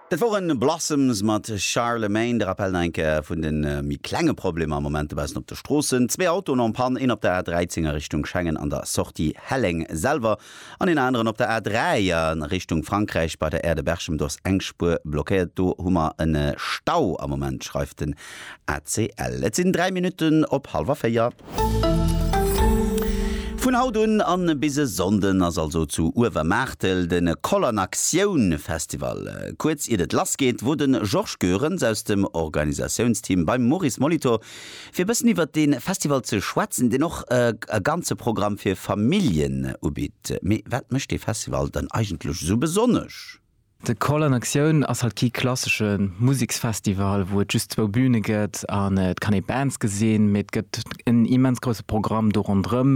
Dat woren Blossoms mat Charlemagne. De Rappel nach eng Kéier vun de méi klenge Problemer am Moment dobaussen op de Stroossen. Zwee Autoen en Panne, een op der A13 a Richtung Schengen an der Sortie Helleng selwer an een aneren op der A3 a Richtung Frankräich bei der Aire de Berchem. Do ass eng Spuer blockéiert. Do hu mer e Stau am Moment, schreift de ACL. Et sinn 3 Minutten op halwer 4. Vun haut un an bis e Sonnden ass also zu Uewermaartel de Koll an Aktioun Festival. Kuerz iert et lass geet wor de Georges Goerens aus dem Organisatiounsteam beim Maurice Molitor fir e bëssen iwwert de Festival ze schwätzen, deen och e ganze Programm fir Familljen ubitt. Mee wat mécht dee Festival dann eigentlech esou besonnesch? De Call an Aktioun ass halt kee klassesche Museksfestival, wou et just zwou Bühne gëtt an et kann ee Bands gesinn, mee et gëtt en immens grousse Programm do ronderëm.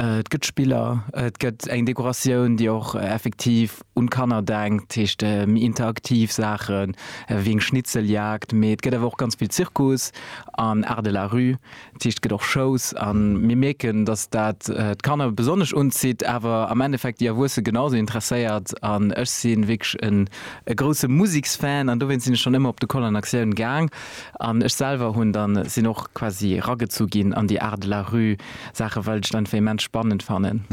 Et gëtt Spiller, et gëtt eng Dekoratioun, déi och effektiv un d'Kanner denkt, dat heescht méi interaktiv Saachen, wéi eng Schnitzeljagd. Mee et gëtt awer och ganz vill Zirkus an Art de la rue, D'Sicht gëtt och schous a mir mierken, dass dat d'Kanner besonnesch unzitt, awer am Endeffekt déi Erwuesse genausou interesséiert. An ech si wierklech e grousse Museksfan an dowéinst sinn ech schonn ëmmer op de Koll an Aktioun gaang. An ech selwer hunn dann, sinn och quasi eragezu ginn an déi Art de la rue Saache well ech dat einfach immens spannend fannen.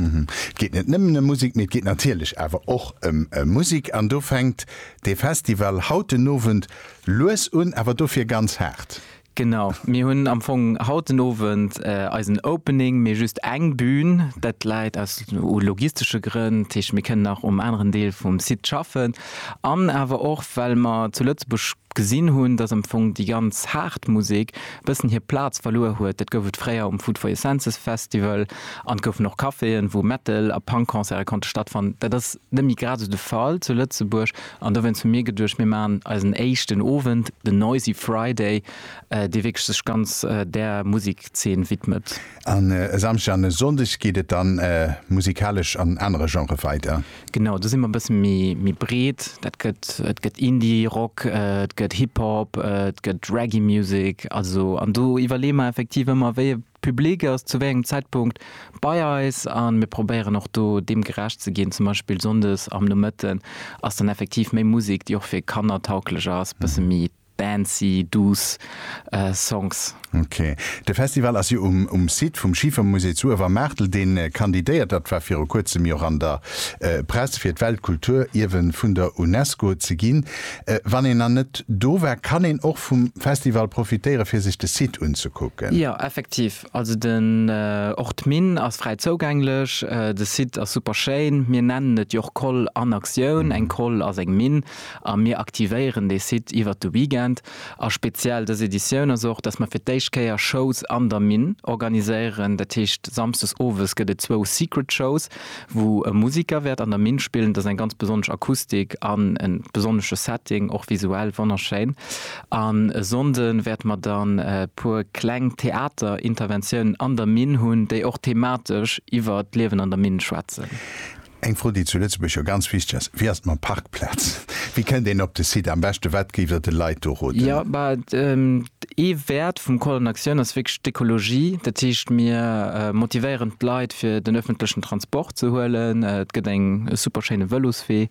Et geet net nëmmen ëm Musek, mee et geet natierlech awer och ëm Musek an do fänkt dee Festival haut den Owend lues un, awer dofir ganz haart. Genau, mir hunn am Fong haut den Owend eisen Opening, mee just eng Bühn. Dat läit aus logistesche Grënn, dat heescht, mir kënnen nach um aneren Deel vum Site schaffen an awer och, well mer zu Lëtzebuerg gesinn hunn, dass am Fong déi ganz haart Musek e bëssen hir Plaz verluer huet. Dat gouf et fréier um Food for Your Senses Festival an et goufen och Caféen, wou Metal a Punk-Concerte konnte stattfannen. Dat ass net méi grad esou de Fall zu Lëtzebuerg. An dowéinst hu mir geduecht, mir maachen eisen éischten Owend, den Noisy Friday, dee wierklech sech ganz där Musikzeen widmet. En e Samschdeg an e Sonndeg geet et dann musikalesch an anere Genrë weider. Genau, do si mer e bësse méi breet. Dat gëtt, et gëtt Indie Rock, et gëtt Hip Hop, et gëtt Reggae Music, also an do iwwerleeë mer effektiv ëmmer, wéi e Public ass zu wéi engem Zäitpunkt bei eis a mir probéieren och do deem gerecht ze ginn. Zum Beispill sonndes am Nomëtten ass dann effektiv méi Musek, déi och fir Kanner tauglech ass, bësse méi dancy, douce Songs. Ok. De Festival ass jo um Site vum Schiefermusée zu Uewermaartel, dee kandidéiert. Dat war viru kuerzem jo an der Press, fir d'Weltkulturierwen vun der UNESCO ze ginn. Wann een nach net do war, kann een och vum Festival profitéieren fir sech de Site unzekucken. Jo effektiv, also den och d'Minn ass fräi zougänglech, de Site ass super schéin. Mir nennen et jo och Koll an Aktioun, eng Koll ass eng Minn a mir aktivéieren dee Site iwwert de Weekend. A speziell dës Editioun ass och, datt mer fir d'éischt Kéier Shows an der Minn organiséieren, dat heescht samsdes owes gëtt et zwou Secret Shows. Wou e Musiker wäert an der Minn spillen. Et ass eng ganz besonnesch Akustik an e besonnesche Setting, och visuell wonnerschéin. An e Sonnde wäerte mer dann e puer kleng Theaterinterventiounen an der Minn hunn, déi och thematesch iwwer d'Liewen an der Minn schwätzen. Eng Fro, déi zu Lëtzebuerg jo ganz wichteg ass, Wéi ass et mam Parkplaz? Wéi kënnt een op de Site am beschte? Wat géift Der de Leit do roden? Ee Wäert vum Call an Aktioun ass wierklech d'Ekologie. Dat heescht, mir motivéieren d'Leit fir den öffentlechen Transport ze huelen. Et gëtt eng super schéine Vëloswee,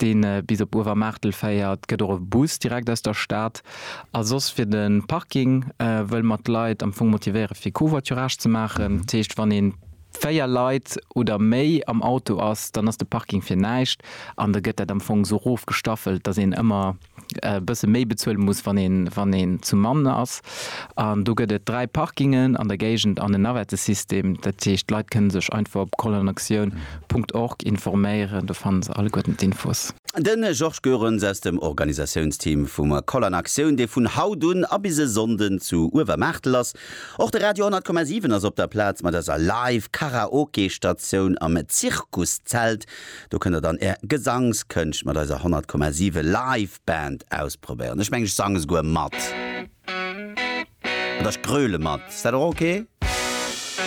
dee bis op Uewermaartel féiert, gëtt och e Bus direkt aus der Stad. A soss fir de Parking wëlle mer d'Leit am Fong motivéiere fir Covoiturage ze maachen. Dat heescht, wann ee 4 Leit oder méi am Auto ass, dann ass de Parking fir näischt an da gëtt dat am Fong esou erofgestaffelt, datt een ëmmer e bësse méi bezuele muss, wann een zu Mann ass. An do gëtt et dräi Parkingen an der Géigend an en Navettesystem. Dat heescht, d'Leit kënne sech einfach op colonactioun Punkt org informéieren, do fanne se alleguerten d'Infos. De Georges Goerens aus dem Organisatiounsteam vum Colonactioun, dee vun haut un a bis e Sonnden zu Uewermaartel ass. Och de Radio 100,7 ass op der Plaz mat eiser Live-Karaoke-Statioun am Zirkuszelt. Do kënnt der dann är Gesangskënscht mat eiser 100,7 Live Band ausprobéieren. Ech mengen ech sang esouguer mat oder ech gröle mat. Ass dat och ok?